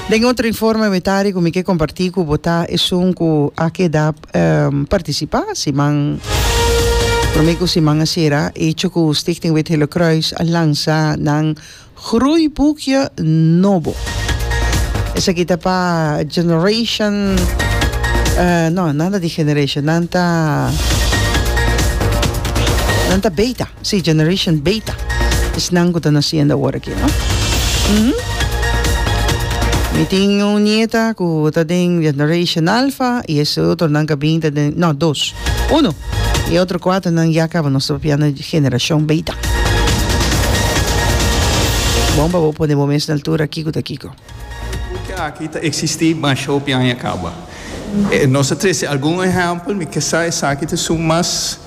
Den otro informe mi tari ku mi ke kompartí ku bo ta esun ku a keda partisipá siman promé ku siman a sera echo ku Stichting Wit Hille Croes a lansa nan groeibukje nobo. Esaki ta pa generation no nan ta di generation nan ta nan ta beta. Sí, Generation Beta. Esnan cu ta naciendo awor aki, no? Umm. Mi tin un nieta cu ta den Generation Alpha y e otronan ca bin ta den, no, dos. Uno. Y e otro cuatronan ya caba nos propiando Generacion Beta. Bon pa bo pone bo mes na altura kico ta kico. Purke aki ta eksistí mas hopi aña kaba. Nos ta trese algun ehèmpel, mi ke sa esaki ta su mas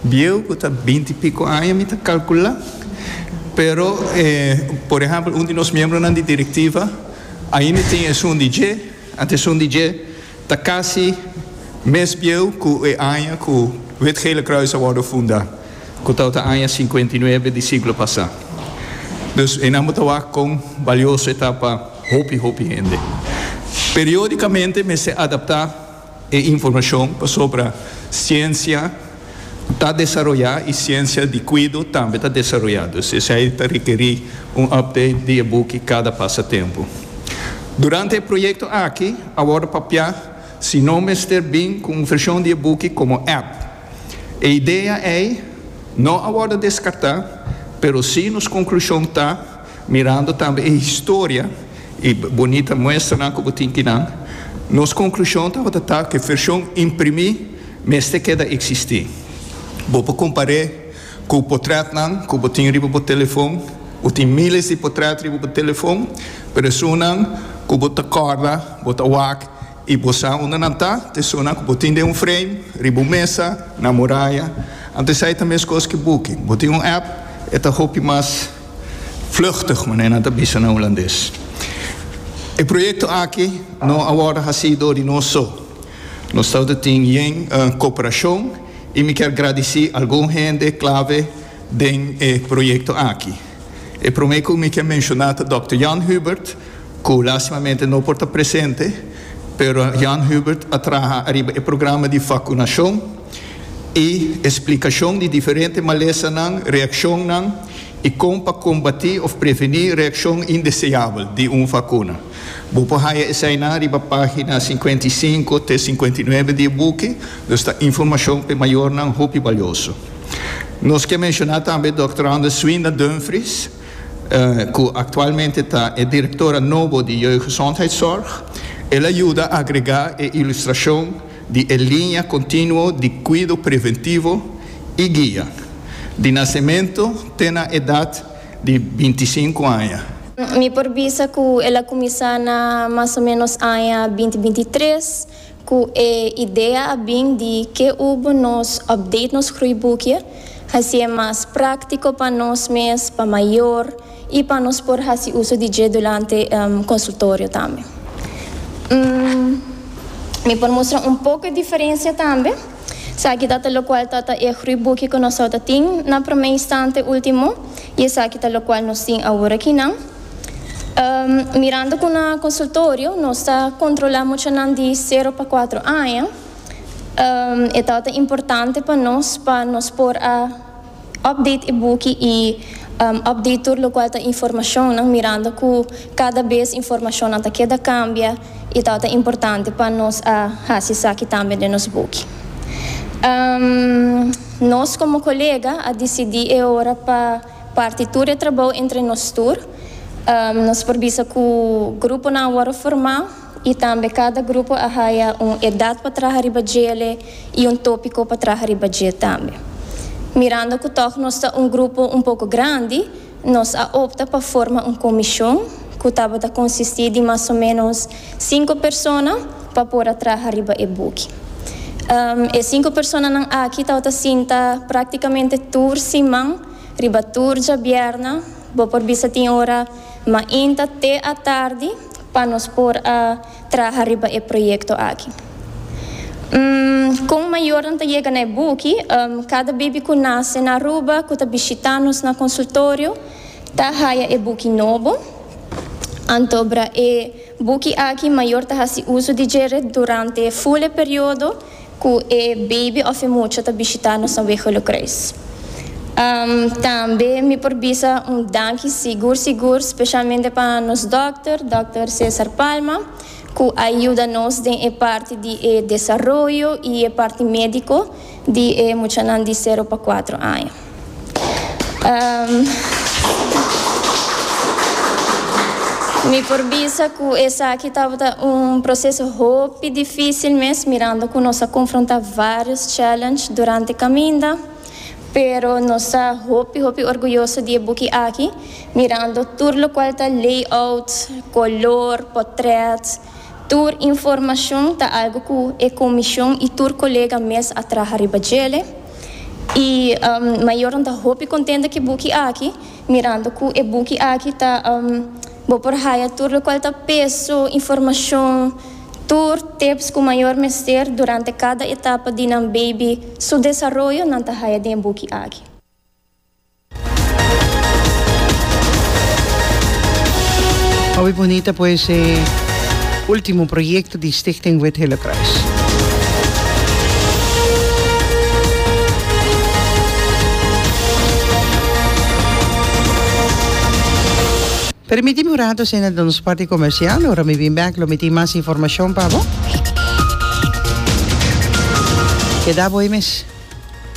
bieu ku ta binti piko aña mi ta kalkulá. Pero, por ehèmpel un di nos miembronan di direktiva ainda tin esun di dje, anto esun di dje ta kasi mes bieu ku e aña ku Wit Gele Kruis a wòrdu fundá. ku ta ota aña sinkuenta i nuebe di siglo pasá. Dus einan bo ta wak kon balioso e ta pa hopi hopi hende. Periódikamente mester adaptá e informashon pasobra siensia ta desaroyá i siensia di kuido tambe ta desaroyá. Dus esei ta rekerí un update di e buki kada pasa tempu. Durante e proyekto aki a wòrdu papiá si no mester bin ku un vershon di e buki komo app. E idea ei no a wòrdu deskartá, pero sí nos konklushon ta, mirando tambe e historia i bunita muestranan ku bo tin di nan, nos konklushon tabata ta ku e fershon imprimí mester keda eksistí. Bo por kompar'é ku potrètnan ku bo tin riba bo telefon. Bo tin míles di potrèt riba bo telefon, pero esunnan ku bo ta kòrda, bo ta wak. I bo sa unda nan ta, tesornan ku bo tin den un freim, riba un mesa, na moraya. Ante esei ta meskos ku buki. Bo tin un app, e ta hopi mas vluchtig, manera nan ta bisa na hulandes. E proyekto aki no a wòrdu hasí dor di nos so. Nos tabata tin yen koperashon i mi kier gradisí algun hende klave den e proyekto aki. E promé ku mi kier menshoná ta dòkter Jan Hubert, cu lastimamente no por ta presente, pero Jan Hubert a traha ariba e programa di vacunacion y e splicacion di diferente malesanan, reaccionnan y con pa combati of preveni reaccion indeseabel di un vacuna. Bo por haya esainan riba pagina cincuenta y cinco te cincuenta y nuebe di e buki, dus ta informacion p'e mayornan hopi balioso. Nos ke menciona tambe Dòkter Anders Swinda Dumfries, cu actualmente ta e directora nobo di Jeugdgezondheidszorg, el a yuda agrega e ilustracion di e linea continuo di cuido preventivo y guia, di nacemento te na edad di binti sinku aña. Mi por bisa cu el a cuminsa na mas o menos aña binti binti tres, Ku e idea a bin di ke ubo nos update nos gruibukie, hasi e mas práktiko pa nos mes, pa mayor i pa nos por hasi uso di dje durante konsultorio tambe. Mi por mustra un poko e diferensia tambe. Esaki ta ta lokual ta ta e gruibukie ku nos tabata tin na promé instante, último, i esaki ta lokual nos tin awor akinan. Mirando ku na konsultorio nos ta kontrolá muchanan di sero pa kuatro aña, e ta ota importante pa nos pa nos por a òpdate e buki i òpdate tur lokual ta informashonnan mirando ku kada bes informashonnan ta keda kambia i ta ota importante pa nos a hasi esaki tambe den nos buki. Nos komo kolega a disidí e ora pa. Parti tur e trabou entre nos tur. Nos por bisa cu gruponan a worde formá y tambe cada grupo a haya un edad pa traha riba djele y un topico pa traha riba dje tambe. Mirando cu tog nos ta un grupo un poco grandi, nos a opta pa forma un comishon cu tabata consistí di mas o menos Sinku persona pa por a traha riba e buki. E sinku personanan aki tabata sinta práktikamente tur siman, riba tur djabièrna, bo por bisa tin ora mainta te atardi pa nos por a traha riba e proyekto aki. Kon mayornan ta yega na e buki, Kada bibi ku nase na Aruba ku ta bishitá nos na konsultorio, Ta haya e buki nobo. Anto bra e buki aki mayor ta hasi uso di dje ret durante e fule periodo cu e baby of e mucha ta bishita nos na Wegelukruis. Umm tambe mi por bisa un danki sigur sigur specialmente pa nos dokter, Dokter Cesar Palma, cu a yuda nos den e parti di e desaroyo y e parti medico di e muchanan di sero pa cuatro aña. Um, mi por bisa cu esaki tabata un proceso hopi dificil mes, mirando cu nos a confronta varios challenge durante caminda, pero nos ta hopi hopi orguyoso di e buki aki, mirando tur locual ta layout, color, potret. Tur informashon ta algu ku e komishon i tur kolega mes a traha riba djele. I mayornan ta hopi kontenta ku e buki aki, mirando ku e buki aki ta bo por haya tur lokual ta peso, informashon, tur tips ku mayor mester durante kada etapa di nan beibi su desaroyo nan ta haya den e buki aki. Awe bunita pues e ultimo proyecto di Stichting Wit Hillekruis. Permiti mi un rato sende na nos parti comercial. Ora mi bin back lo mi tin mas informacion pa bo. Keda bo ahí mes.